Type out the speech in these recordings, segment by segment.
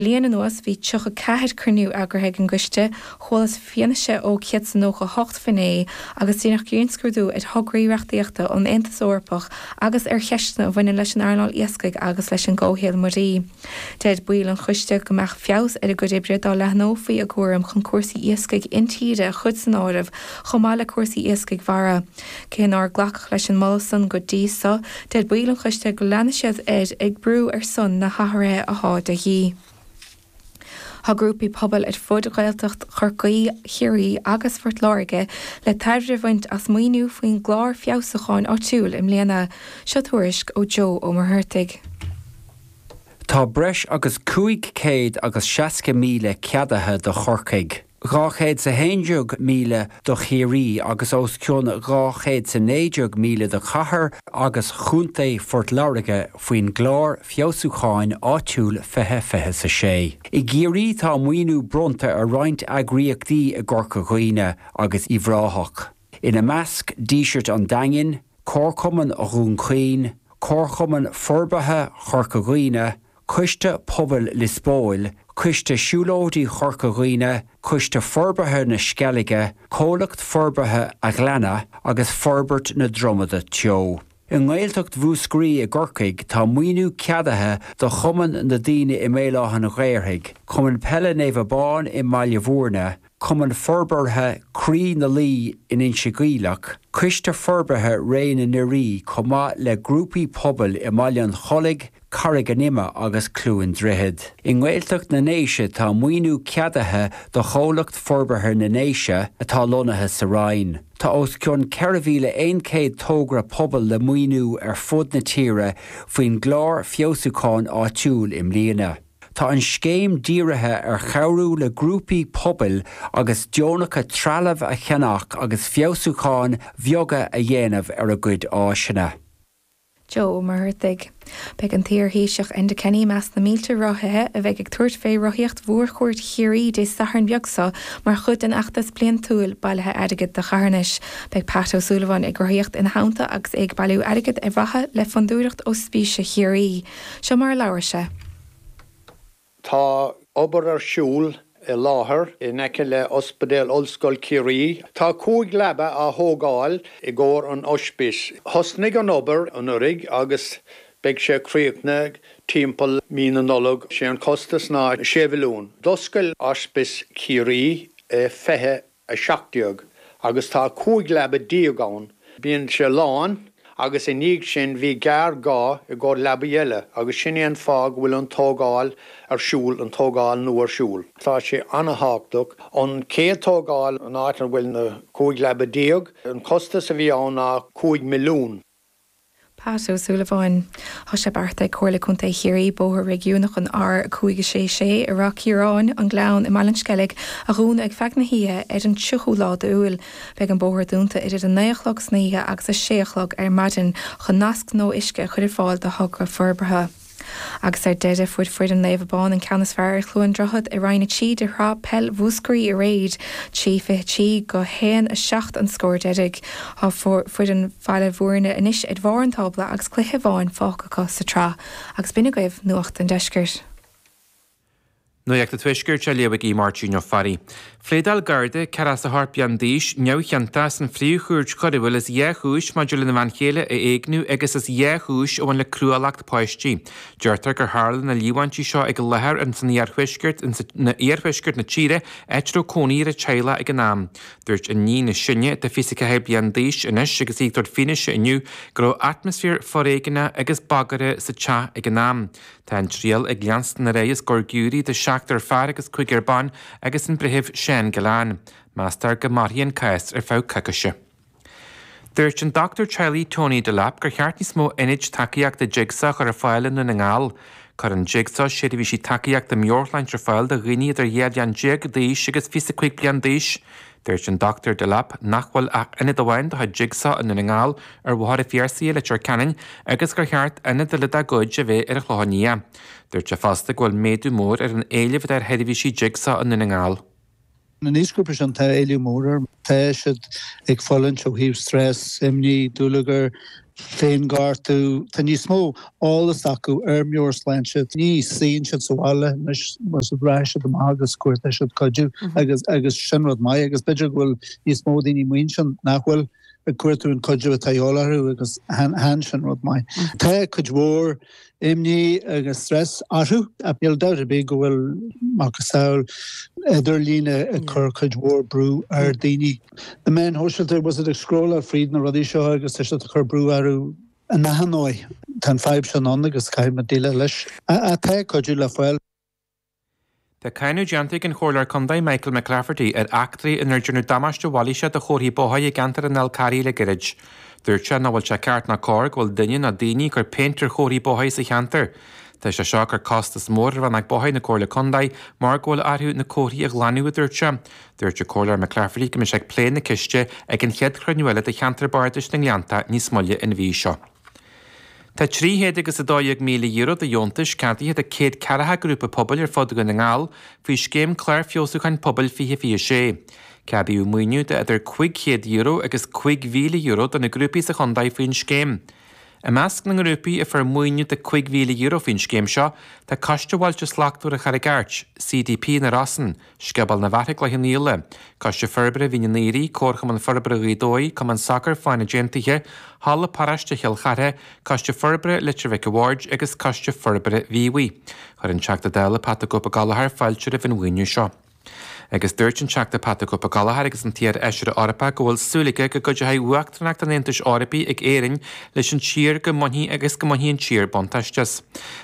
bliain anuas bhí 34 cruinniú eagraithe ag an gCoiste, chualas fianaise ó 198 finné agus déanadh grinnscrúdú ar thograí reachtaíochta ón Aontas Eorpach agus ar cheisteanna a bhaineann leis an earnáil iascaigh agus leis an gcomhshaol mhuirí. Deir baill an Choiste go mbeadh feabhas ar a gcuid oibre dá leathnófaí a gcúram chun cúrsaí iascaigh intíre a chur san áireamh chomh maith le cúrsaí iascaigh mhara. Cé nár glacadh leis an moladh san go dtí so, deir baill an choiste go leanfaidh siad ar aghaidh ag brú ar son na hathruithe athá de dhíth. Tá grúpaí pobail ar fud Ghaeltacht Chorcaí, Chiarraí agus Phort Láirge le tairbhe a bhaint as maoiniú faoin gclár feabhsúcháin áitiúil i mbliana. Seo tuairisc ó Joe Ó Muircheartaigh. Tá breis agus 560,000 ceadaithe do Chorcaigh. 211,000 do Chiarraí agus os cionn 219,000 do Chathair agus Chontae Phort Láirge faoin gClár Feabhsúcháin Áitiúil 2026. I gCiarraí tá maoiniú bronnta ar roinnt eagraíochtaí i gCorca Dhuibhne agus Uíbh Ráthach, ina measc Díseart an Daingin, Comharchumann Dhún Chaoin, Comharchumann Forbartha Chorca Dhuibhne, Coiste Pobail Lios Póil, Coiste Siúlóidí Chorca Dhuibhne, Coiste Forbartha na Sceilge, Comhlacht Forbartha a' Ghleanna agus Forbairt na Dromoda Teo. I nGaeltacht Mhúscraí i gCorcaigh tá maoiniú ceadaithe do Chumann na Daoine i mBéal Átha'n Ghaorthaidh, Cumann Peile Naomh Abán i mBaile Bhuirne, Cumann Forbartha Croí na Laoi in Inse Geimhleach, Coiste Forbartha Réidh na nDoirí chomh maith le grúpaí pobail i mBaile an Chollaigh, Carraig an Ime agus Cluain Droichead. I nGaeltacht na nDéise tá maoiniú ceadaithe do Chomhlacht Forbartha na nDéise atá lonnaithe sa Rinn. Tá os cionn 4,100 togra pobail le maoiniú ar fud na tíre faoin gclár feabhsúcháin áitiúil i mbliana. Tá an scéim dírithe ar chabhrú le grúpaí pobail agus deonacha trealamh a cheannach agus feabhsúcháin bheaga a dhéanamh ar a gcuid áiseanna. Joe Ó Muircheartaigh. Beidh an t-iar Thaoiseach Enda Kenny i measc na mílte rothaithe a bheidh ag tabhairt fé rothaíocht Mhór-Chuairt Chiarraí Dé Sathairn beag seo mar chuid den fheachtas bliantúil bailithe airgid do charthanais. Beidh Pat Ó Súilleabháin ag rothaíocht ina theannta agus é ag bailiú airgid ar mhaithe le Fondúireacht Ospíse Chiarraí. Seo mar a labhair sé. Tá obair ar siúl fé láthair in aice le Ospidéal Ollscoil Ciarraí. Tá cúig leaba á thógáil i gcomhair an Oispís. Thosnaigh an obair anuiridh agus beidh sé críochnaithe timpeall mí na Nollag. Sé an costas ná sé mhilliún. D'oscail Oispis Chiarraí i 17 agus tá cúig leaba déag ann, bíonn sé lán agus i ndiaidh sin bhí géarghá i gcomhair leaba eile agus sin é an fáth go bhfuil an tógáil ar siúl, an tógáil nua ar siúl. Tá sé an-tábhachtach an chéad tógáil an áit a bhfuil na cúig leaba déag, an costas a bhí ann ná cúig milliún. Pat Ó Súilleabháin. Tá sé beartaithe ag Comhairle Contae Chiarraí bóthar réigiúnach an R5 6 6 i Ráth Chiaráin, sa Ghleann i mBaile an Sceilg, a dhúnadh ar feadh na hoíche ar an 30ú lá d'Iúil. Beidh an bóthar dúnta idir an 9 a chlog istoíche agus a 6 a chlog ar maidin chun nasc nua uisce a chur ar fáil do thogra forbartha. Agus ar deireadh fuair foireann Naomh Abán an ceann is fearr ar Chluain Droichead i Roinn 3 de Shraith Peil Mhúscraí aréir 3 23-1 7 an scór deiridh. Tá foireann Bhaile Mhúirne anois ar bharr an tábla agus cluiche amháin fágtha acu sa tsraith agus b'in agaibh nuacht an deiscirt. Nuacht an Tuaiscirt á léamh ag Aodh Máirtín Ó Fearraigh. Phléadáil Garda, ceathracha seacht bliain d'aois, neamhchiontach sa Phríomh-Chúirt Choiriúil as dhá chúis maidir lena bhean chéile a éigniú agus as dhá chúis a bhain le cruálacht páistí. Deirtear gur tharla na líomhaintí seo ag láthair in san iarthuaisceart in iarthuaisceart na tíre, áit a raibh cónaí ar an teaghlach ag an am. Dúirt an iníon is sine, atá 24 bliain d'aois anois agus í ag tabhairt fianaise inniu, go raibh atmaisféar foréigeanach agus bagrach sa teach ag an am. Tá an triail ag leanstan ar aghaidh os comhair giúiré de sheachtar fear agus cúigear ban agus an breitheamh Seán Gillane. Meastar go mairfidh an cás ar feadh coicíse. Dúirt an dochtúir teaghlaigh Tony Delap gur cheart níos mó ionaid tacaíochta Jigsaw a chur ar fáil i nDún na nGall. Cuireann Jigsaw seirbhísí tacaíochta meabhairshláinte ar fáil do dhaoine idir 12 bhliain d'aois agus 25 bliain d'aois. Dúirt an Dr Delap nach bhfuil ach ionad amháin do Jigsaw i nDún na nGall, ar Bhóthar an Phiarsaigh i Leitir Ceanainn, agus gur cheart ionad eile dá gcuid a bheith ar an Chlochán Liath. Dúirt sé fosta go bhfuil méadú mór ar an éileamh atá ar sheirbhísí Jigsaw i nDún na nGall. An aoisghrúpa sin, tá éileamh mór air. Tá siad ag fulaingt ó thaobh stress, imní, dúlagar, féinghortú. Tá níos mó eolais acu ar meabhairshláinte. Ní suíonn siad sa bhaile anois rachaidh siad amach agus cuartaíonn siad cuidiú agus agus sin rud maith agus b'fhéidir go bhfuil níos mó daoine amuigh ansin nach bhfuil ag cuartú an cuidiú atá a dhíobháil orthu agus chan sin rud maith. Tá cuid mhór imní agus stress orthu. Níl dabht ar bith go bhfuil macasamhail idirlíne ag cur cuid mhór brú ar daoine. Na meáin shóisialta tá siad ag scrólláil fríd na rudaí seo agus tá siad ag cur brú orthu in achan dóigh. Tá an fadhb sin ann agus caithfimid déileáil leis. Tá cuidiú le fáil. Tá cáineadh déanta ag an Chomhairleoir Condae Michael McClafferty ar eachtraí inar déanadh damáiste mhailíseach do chomharthaí bóthair i gceantar an Fháil Charraigh le gairid. Dúirt sé nach bhfuil sé ceart ná cóir go bhfuil duine ná daoine ag cur péint ar chomharthaí bóthair sa cheantar. Tá sé seo ag cur costas mór ar Rannóg Bóthair na Comhairle Condae mar go bhfuil orthu na comharthaí a ghlanadh a dúirt sé. Dúirt an Comhairleoir McClafferty go mbeidh sé ag plé na ceiste ag an chéad chruinniú eile de Cheantar Bardais na nGleannta níos moille an mhí seo. Tá trí chéad agus a dó dhéag míle euro de dheontais ceadaithe do céad ceathracha grúpa pobail ar fud Dhún na nGall faoi scéim Clár Feabhsúcháin Pobail 2026. Ceadaíodh maoiniú de idir cúig chéad euro agus cúig mhíle euro do na grúpaí sa chondae faoin scéim. I measc na ngrúpaí a fuair maoiniú de cúig mhíle euro faoin scéim seo tá Coiste Bhailte Slachtmhara Charraig Airt, CDP na Rosann, Scioból na bhFathach Gleann Íle, Coiste Forbartha Mhín an Aoire, Comharchumann Forbartha Ghaoth Dobhair, Cumann Sacair Fánaid Aontaithe, Halla Paráiste Chill Chartha, Coiste Forbartha Leitir Mhic an Bhaird agus Coiste Forbartha Mhíobhaí. Chuir an Teachta Dála Pat 'The Cope' Ó Gallchóir fáilte roimh an mhaoiniú seo. Agus dúirt an Teachta Pat 'The Cope' Ó Gallchóir agus an t-iar-Fheisire Eorpach go bhfuil súil aige go gcuideoidh uachtaranacht an Aontais Eorpaigh ag Éirinn leis an tír go mbainfidh agus go mbainfidh an tír buntáiste as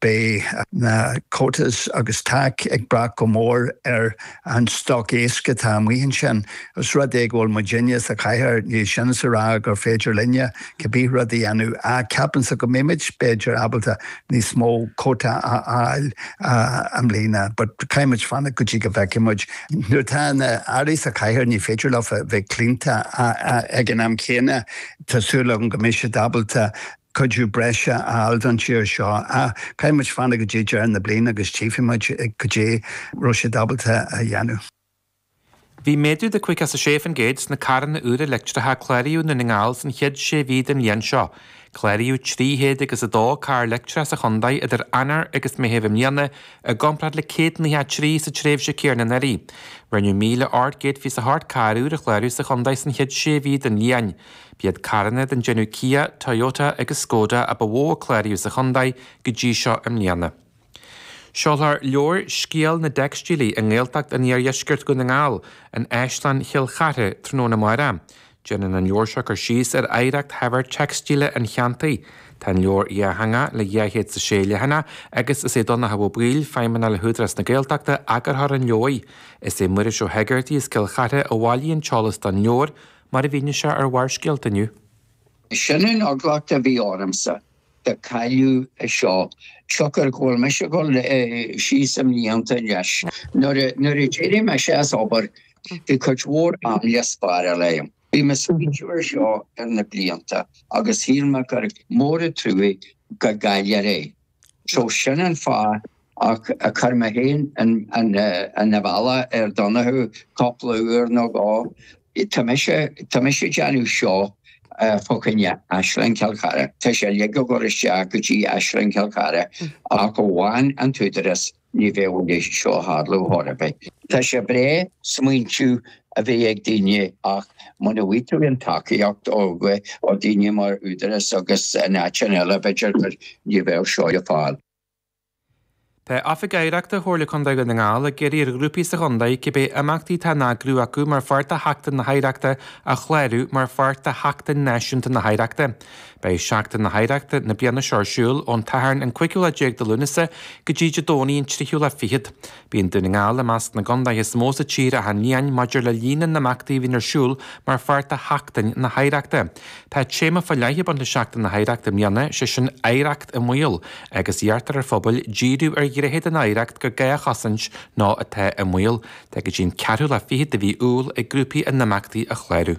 Beidh na quotas agus TAC ag brath go mór ar an stoc éisc atá amuigh ansin. Os rud é go bhfuil muidinne sa chathaoir, níl sin is a rá gur féidir linne cibé rud a dhéanamh, ach ceapaimse go mbeimid b'fhéidir ábalta níos mó cuóta a fháil i mbliana. But caithfimid fanacht go dtí go bhfeicfidh muid. Nuair atá na hairí sa chathaoir ní féidir leofa bheith claonta ag an am céanna. Tá súil agam go mbeidh siad ábalta. cuidiú breise a fháil don tír seo. Caithfidh muid fanacht go dtí deireadh na bliana agus tchífidh muid cad é a raibh siad ábalta a dhéanamh. Bhí méadú de 56% sna carranna úra leictreacha a cláraíodh i nDún na nGall san chéad sé mhí den bhliain seo. Cláraíodh trí chéad agus a dó carr leictreach sa chondae idir Eanáir agus Meitheamh i mbliana i gcomparáid le céad nócha trí sa tréimhse céanna anuraidh. Rinneadh míle ocht gcéad fiche is a hocht carr úr a chlárú sa chondae san chéad sé mhí den bhliain. B'iad carranna den déanamh Kia, Toyota agus Skoda a ba mhó a cláraíodh sa chontae go dtí seo i mbliana. Seolfar leabhar 'Scéal na dTeicstílí i nGaeltacht an Iardheiscirt Dhún na nGall' in Áislann Chill Chartha tráthnóna amárach. Déanann an leabhar seo cur síos ar oidhreacht shaibhir teicstíle an cheantair. Tá an leabhar dátheangach le dhá chéad is a sé leathanach agus is é Donnchadh Ó Baoill, Feidhmeannach le hÚdarás na Gaeltachta eagarthóir an leabhair. Is é Muiris Ó hÉigeartaigh as Cill Chartha a bhailigh an t-eolas don leabhar. Mar a mhínigh sé ar Bharrscéalta inniu. Sin an eagla a bhí ormsa go gcaillfí é seo siocair go bhfuil mise ag dul síos i mblianta anois. Nuair a d'éirigh mise as obair bhí cuid mhór am le spáráil agam. Bhí mé ag smaointiú ar seo thar na blianta agus shíl mé gurbh mór an truaigh go gcaillfear é. So sin an fáth ach a chuir mé féin an fhalla ar Donoghue cúpla uair nó dhó. Tá mise tá mise ag déanamh seó fá choinne Áislann Chill Chartha. Tá sé uilig á chur isteach go dtí Áislann Chill Chartha ach amháin an tÚdarás. Ní bheadh an deis seo a tharlú chor ar bith. Tá sé breá smaointiú a bheith ag daoine ach muna bhfaighidh tú an tacaíocht ó dhaoine mar Údarás agus in áiteanna eile b'fhéidir gur ní bheadh seo le fáil. Tá Oifig Oidhreachta Chomhairle Contae Dhún na nGall ag iarraidh ar ghrúpaí sa chontae cibé imeachtaí atá á n-eagrú acu mar pháirt de Sheachtain na hOidhreachta a chlárú mar pháirt de Sheachtain Náisiúnta na hOidhreachta. Beidh Seachtain na hOidhreachta na bliana seo ar siúl ón tSatharn an cúigiú lá déag de Lúnasa go dtí Dé Domhnaigh an tríú lá fichead. Bíonn Dún na nGall i measc na gcondaetha is mó sa tír achan bhliain maidir le líon na n-imeachtaí a bhíonn ar siúl mar pháirt de Sheachtain na hOidhreachta. Tá téama fá leith ag baint le Seachtain na hOidhreachta i mbliana, sé sin Oidhreacht i mBaol, agus iarrtar ar phobail díriú ar ghnéithe den oidhreacht gur gá a chosaint nó atá i mbaol. Tá go dtí an ceathrú lá fichead de mhí Iúil ag grúpaí a n-imeachtaí a chlárú.